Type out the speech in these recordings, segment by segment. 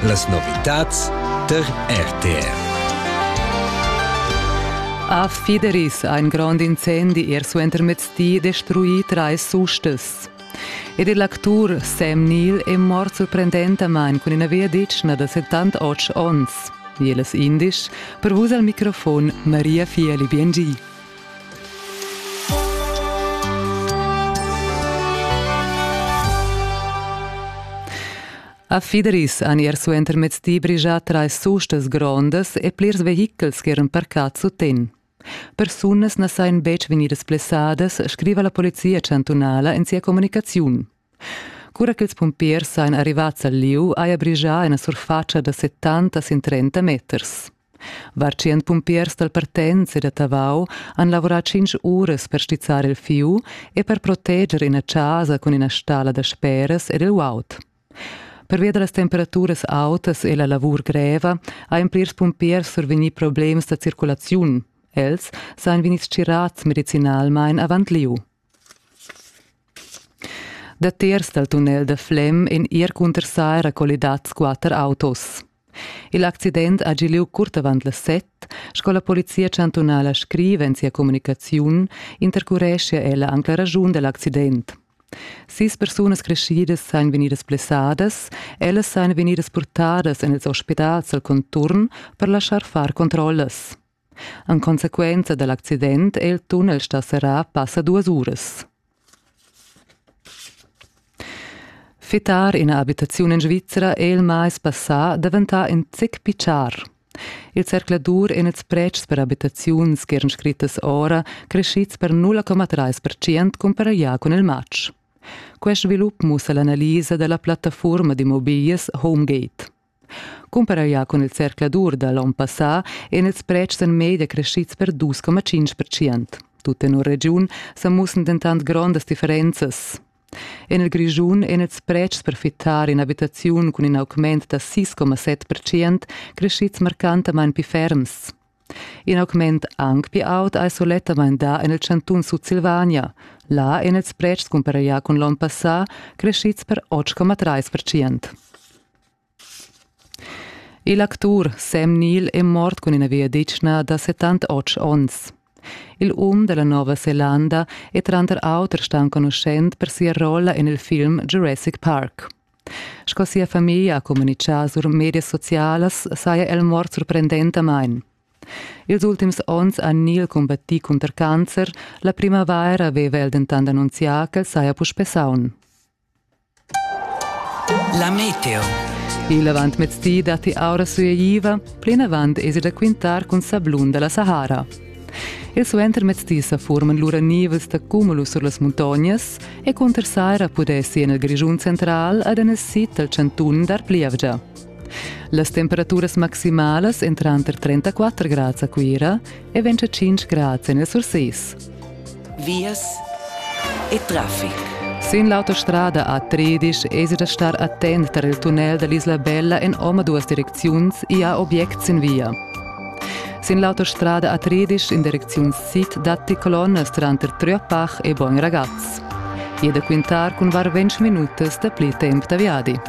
Las novitads tar RTR. A Fideris ein grond incendi er suentermezdi destrui trais sustas. Ed il actur Sam Neill è mort sorprendentamain cun ina via ditschna da 78 onns. Jeles indisch, per vus al microfon Maria Fieli Biengi. A Fidris han ier suenter mezdi brigià trais sustas grondas e plirs vehichels che eran parcads suten. Persunas na sajan betg vegnidas blessadas, scriva la polizia chantunala en sia communicaziun. Cura ch'ils pumpiers ein arrivats al liug, haja brigià ina surfatscha da settanta sin trenta meters. Var tschient pumpiers dal Partenz e da Tavau han lavorà tschintg uras per stizzar il fiu e per proteger ina chasa cun ina stalla da speras ed il uaut. Pervia da las temperaturas autas e la lavur greva hajan plirs pumpiers survegnì problems da circulaziun. Els sajan vegnids tgirads medicinalmain avant lieu. Datiers dal tunnel da Flem èn ir cunter saira collidads quatter autos. Il accident ha gì lieu curt avant las set, sco la polizia chantunala scriva en sia communicaziun, intercureschia ella anc la raschun da l'accident. Sis persunas creschidas sain vegnidas blessadas, ellas sain vegnidas purtadas en ils ospitals al conturn per laschar far controllas. En consequenza da l'accident è il tunnel stà serrà passa duas uras. Fittar ina abitaziun en Svizra è il mais passà daventà in zic pichar. Il zercladur en ils pretschs per abitaziuns che eran scrittas ora crescids per 0,3% comparaglià cun il matg. Quest svilup mussa l'analisa da la plattafurma d'immobiglias Homegate. Cumparaglià cun il zercladur da l'onn passà èn ils pretschs en media creschids per 2,5%. Tut tenor regiun sa mussan dentant grondas differenzas. En il Grischun èn ils pretschs per fittar in'abitaziun cun in augment da 6,7% creschids marcantamain pli ferms. In augment anc pli aut ei sulettamain dà en il chantun Sutsilvania. Là ein ils pretschs cumparaglià cun l'onn passà crescids per 8,3 percent. Il actur Sam Neill è mort cun ina viaditschna da 78 onns. Il um dalla Nova Zelanda è tranter auter star enconuschent per sia rolla en il film Jurassic Park. Sco sia famiglia ha communitgà sur medias socialas saja el mort surprendentamain. Ils ultims onns ha Neil combattì cunter cancer, la primavaira aveva el dentant annunzià ch'el saja puspè saun. La meteo. Il avantmezdi datti aura sueiva, plinavant esi da quintar cun sablun da la Sahara. Il suentermezdi sa furman lura nivels da cumulus sur las muntognas e cunter saira pudessi en il Grischun central ad en il sid dal chantun dar plievgia. Las temperaturas maximalas èn tranter 34 grads a Cuira e 25 grads en il Surses. vias e traffic. Sin l'autostrada A13 esi da star attent tar il tunnel da l'Isla Bella en omaduas direcziuns i ha objects sin via. Sin l'autostrada A13 in direcziun sid datti colonnas tranter Tröpach e Bogn Ragaz. I è da quintar cun var ventg minutas dapli temp da viadi.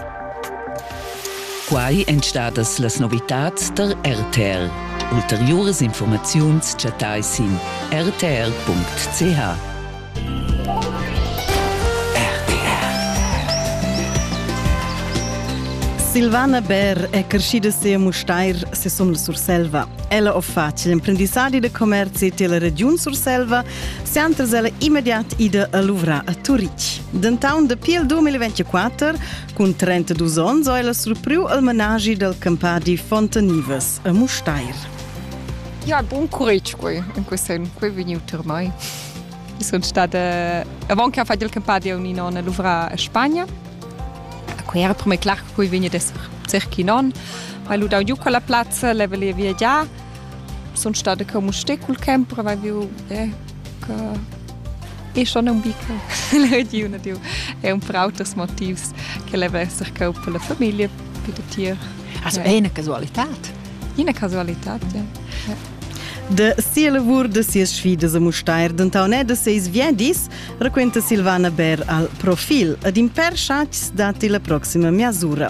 Quai èn stadas las novitads tar RTR. Ulteriuras informaziuns chattai sin rtr.ch. Silvana Bär è crescida se a Mustair, sesun Surselva. Ella ho fatg l'imprendissadi de commerci tilla regiun Surselva, se antres ella immediat ida a luvrar a Turitg. Dentaun dapi il 2024 Cun 32 onns ha ella surpriu il menaschi dal campadi Fontanivas a Mustair. Ja, buon curage quei, in quest anno quei vegniu ter mai. Sono stata avanti a fare il campadi a un'inonna Luvra a Spagna. Quei era per me clar che quei vegna d'esser cerchi non. Hai ludau giu quella plazza, le vole viagiar. sun stada co Musté cul camp prova viu eh, e schon un bica l'ediu na diu è un per auters motivs che leva esser cau per la famiglia per da tier also è una casualità Ina casualità ja. ja. De sia lavur, de sias sfidas a Mustair, denton è de seis viedis, raquenta Silvana Ber al profil, ed in per chats datti la proxima miasura.